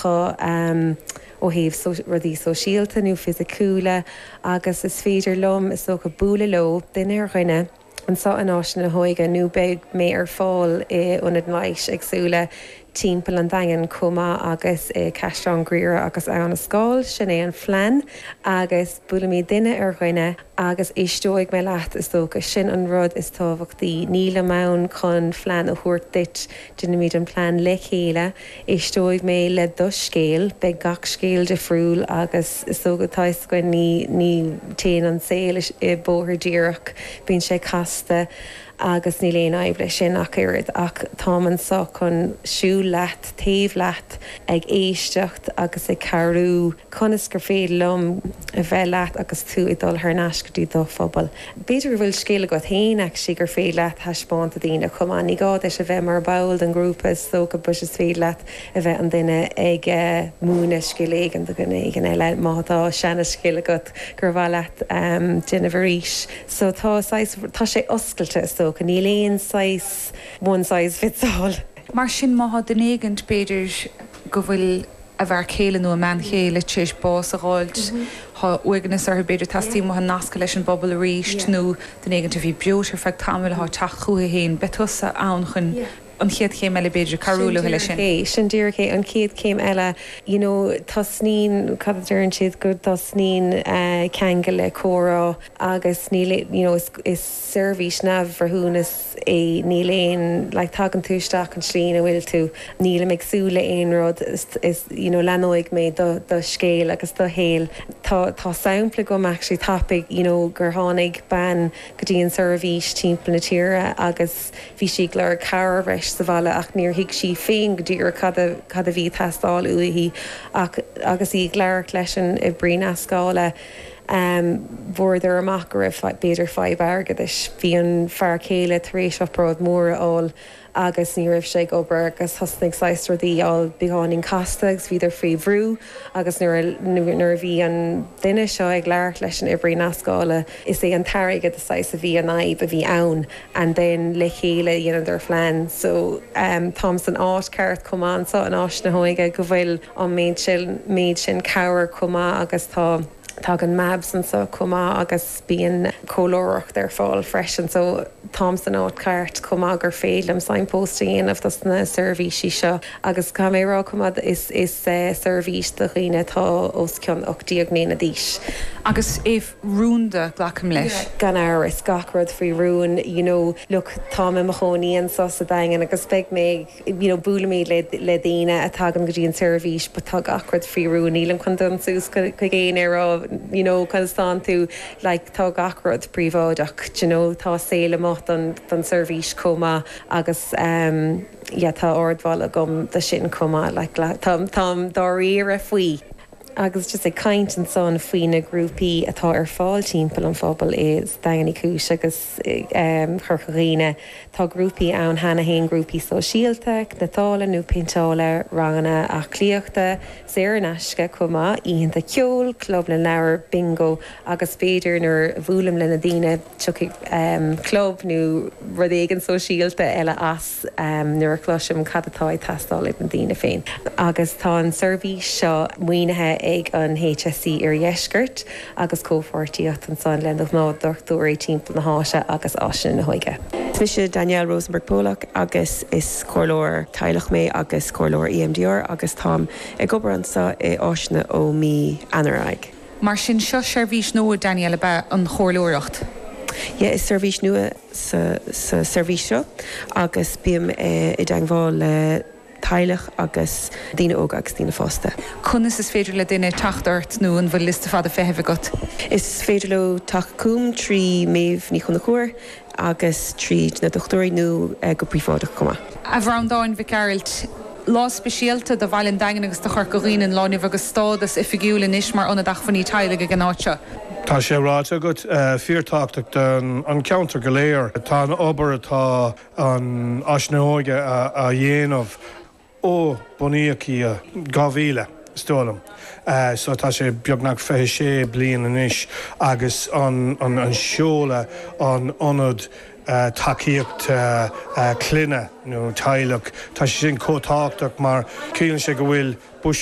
dho ó thaobh rudaí sóisialta nó fisiciúla agus is féidir liom, is dócha, bualadh leo duine ar dhuine anseo in Áiseanna na hÓige nó beidh mé ar fáil in ionaid leighis éagsúla timpeall an Daingin chomh maith agus i gCaisleán Ghriaire agus Abhainn an Scáil. Sin é an phlean agus buailfimid duine ar dhuine agus éisteoidh mé leat, is dócha, sin an rud is tábhachtaí. Nílim ann chun phlean a thabhairt duit, déanfaimid an plean le chéile. Éisteoidh mé le do scéal. Beidh gach scéal difriúil agus is dócha tá a fhios againn ní téann an saol i bóthar díreach, bíonn sé casta agus níl aon fhadhb leis sin ach oiread ach táim anseo chun siúl leat, taobh leat, ag éisteacht agus ag cabhrú conas gur féidir liom a bheith leat agus tú ag dul thar n-ais go dtí do phobal. B'fhéidir go bhfuil scil agat féin, actually, gur féidir leat thaispeáint do dhaoine chomh maith. Ní gá duit a bheith mar bhall den ghrúpa, is dócha, but is féidir leat a bheith an duine ag múineadh scil éigin do dhuine éigin eile. Má tá seanascil agat gur mhaith leat déanamh arís. So tá saghas, tá sé oscailte, is dócha. Níl aon saghas one size fits all. Mar sin, má tá duine éigin, b'fhéidir go bhfuil. a bhfear céile nó a mbean chéile tar éis bás a dh'fháilt. Tá uaigneas orthu, b'fhéidir teastaíonn uathu nascadh leis an bpobal arís nó duine éigint a bhí breoite ar feadh tamaill athá teacht chucu féin, beidh tusa ann chun an chéad chéim eile, b'fhéidir, cabhrú leo leis sin. Sin díreach é, an chéad chéim eile. You know, tosnaíonn, cad a deireann siad, go dtosnaíonn ceangal le comhrá agus níl, you know, is seirbhís neamhbhreithiúnach, í. Níl aon like tagann tú isteach an tslí ina bhfuil tú, nílim ag súil le aon rud is is you know leanóidh mé do do scéal agus do shaol. Tá tá sampla agam actually tapaidh you know gur tháinig bean go dtí an seirbhís timpeall na tíre agus bhí sí ag lorg cabhair breise sa bhaile ach níor thuig sí féin go díreach cad a cad a bhí ag teastáil uaithi ach agus í ag labhairt leis an oibrí nascála fuaireadar amach go raibh b'fhéidir fadhb airgeadais. Bhí an fear céile tar éis obráid mór a fháil agus ní raibh sé ag obair agus thosnaigh saghas rudaí a fháil beagáinín casta agus bhíodar faoi bhrú agus nuair a nuair a bhí an duine seo ag labhairt leis an oibrí nascála is é an t-airgead a saghas a bhí an fhadhb a bhí ann and then le chéile dhéanadar phlean so táim san áit ceart chomh maith anseo in Áiseanna na hÓige go bhfuil an méid sin, méid sin cabhair chomh maith agus tá, tagann MABS anso chomh maith agus bíonn comhairleoireacht ar fáil freisin. So táim san áit cheart chomh maith gur féidir liom signpost a dhéanamh dos na seirbhísí seo agus caithfidh mé a rá chomh maith is, is seirbhís do dhaoine atá os cionn 18 mbliana d'aois. Agus é rúnda, glacaim leis? Gan amhras, gach rud faoi rún. You know, look, táim i mo chónaí anso sa Daingean agus beidh mé ag. you know Buailimid le le daoine a tagann go dtí an tseirbhís but tá gach rud faoi rún níl an chun dul suas chuig éinne ar an you know chun stánann tú like tá gach rud príobháideach d'you know tá saol amuigh don don tseirbhís chomh maith agus em yeah tá ardmholadh agam do sin chomh maith like le tá táim dáiríre faoi agus just ag caint ansan faoi na grúpaí atá ar fáil timpeall an phobail is Daingean Uí Chúis agus. Chorca Dhuibhne. Tá grúpaí ann cheana féin, grúpaí sóisialta, cniotála nó péinteála, ranganna aclaíochta, saor in aisce chomh maith, oícheanta ceoil, club na leabhar, bingo agus b'fhéidir nuair a bhuailim le na daoine tiocfaidh club nó rud éigin sóisialta eile as. 's nuair a chloisim cad atá ag teastáil ag na daoine féin. Agus tá an seirbhís seo maoinithe ag an HSE Iardheisceart agus comhpháirtíocht ansan le na gnáthdhochtúirí timpeall na háite agus Áiseanna na hÓige. Is mise Danielle Rosenberg Pollock agus is comhairleoir teaghlach mé agus comhairleoir EMDR agus táim ag obair anso i Áiseanna ó mí Eanáir ar aghaidh. Mar sin, seo seirbhís nua, Danielle, ab ea? An chomhairleoireacht? Yeah, is seirbhís nua. sa seirbhís seo agus bím i dteangmháil le teaghlaigh agus daoine óga agus daoine fásta. Conas is féidir le duine teacht ort nó an bhfuil liosta fada feithimh agat? Is féidir leo teacht chugam trí Maedhbh Ní Chonchubhair agus trí na dochtúirí nó go príobháideach chomh maith. A Bhreandáin Mhic Gearailt. Lá speisialta do Bhaile an Daingin agus do Chorca Dhuibhne an lá inniu agus stádas oifigiúil anois mar Ionad Acmhainní Teaghlaigh ag an áit seo. Tá sé ráite agat, fíorthábhachtach don gceantar go léir tá an obair atá Áiseanna na hÓige á dhéanamh ó bunaíodh í i 2000 is dóigh liom so tá sé beagnach 26 bliain anois agus an seoladh an ionad tacaíocht clainne nó teaghlaigh. Tá sé sin chomh tábhachtach mar ciallaíonn sé go bhfuil buiséad.